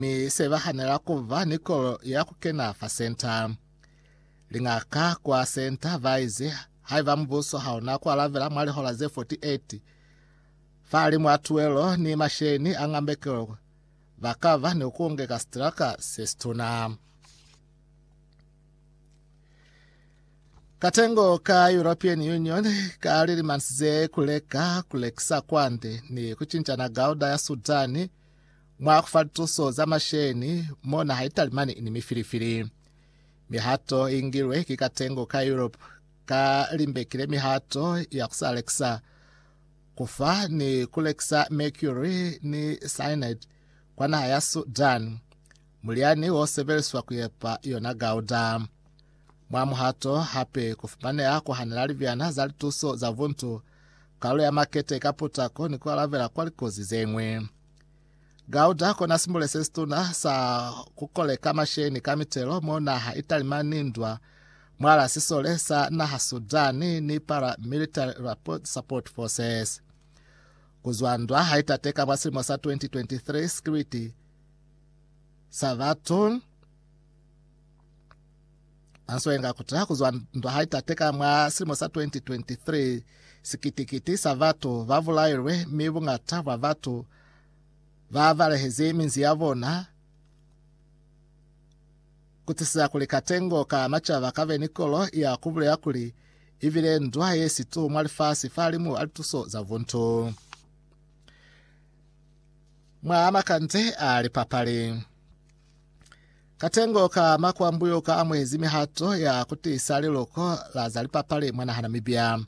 mi se ba hanela ku ba ni kolo ya ku kena fa senta. Lingaka kwa senta ba ize haiba mubuso ha una ku alabela mwa lihola ze 48 fa li mwa tuelo ni masheni a ngambekelo, ba ka ba ni ku ngeka sitilaka se situna. Katengo ka European Union ka lilimansize kuleka kulekisa kwande ni kucincana gauda ya Sudani Mwa kufatuso za masheni mo naha italimani ini mifilifili. Mihato ingilwe ki katengo ka Europe ka limbekile mihato ya kusa lekisa, kufa ni kulekisa mercury ni cyanide kwa naha ya Sudan, mulyani wo sebeliswa kuyepa yona gauda. Mwa muhato hape kufumaneha kuhanela libyana za lituso za buntu, kalulo ya makete ka putako ni kualabela kwa likozi zeñwi. Gauda kona simbule se situna sa kukoleka masheni ka mitelo mo naha italimani ndwa mwala sisole sa naha Sudani ni paramilitary support forces. Kuzwa ndwa haitateka mwa silimo sa 2023 sikiriti sa batun Manswe nga kutaha kuzwa ndwa hai tate ka mwa silimo sa 2023, sikitikiti sa batu ba bulailwe mi bungata bwa batu ba balehezi minzi ya bona kutisiza kuli katengo ka macaba kabe ni kolo ya kubulela kuli ibile ndwa ye situ mwa lifasi fa limu a lituso za buntu mwa makande a lipapali. Katengo ka makwambuyo ka amuezi mihato ya kutiisa liluko la za lipapali mwa naha Namibia.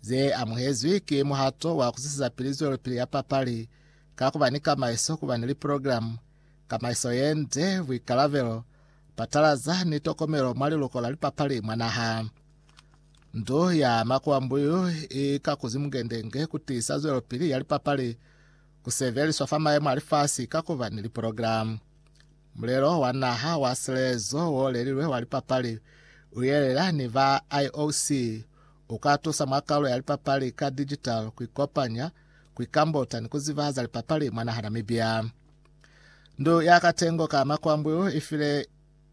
Ze amuhezwi ki muhato wa kuzwiseza pili zwelopili ya papali ka kuba ni kamaiso, kuba ni liprogilamu, kamaiso yende, buikalabelo, patalaza ni tokomelo mwa liluko la lipapali mwa naha. Ndu ya makwambuyo i ka kuzi mungendenge kutiisa zwelopili ya lipapali ku sebeliswa fa maemo a lifasi ka kuba ni liprogilamu. Mulelo wa naha wa selezo wo lelilwe wa lipapali u yelela ni ba IOC u ka tusa mwa kaulo ya lipapali ka digital ku ikopanya, ku ikambuta ni ku ziba za lipapali mwa naha Namibia. Ndu ya Katengo ka Makwambu i file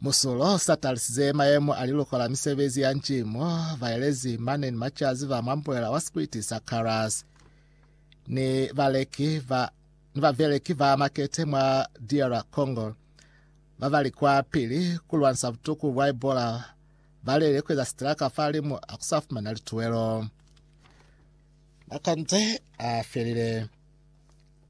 Musulo, sa talisize mayemo a liluko la misebezi ya ncimo, baelezi mane ni macazi ba mwa mbuela wa sikwiti sa Karas ni baleki ba ni babeleki ba makete mwa DR Congo ba bali kwa pili ku lwanisa butuku bwa Ebola balele kueza sitilaka fa limu a kusa fumana lituwelo. Makanze a felile.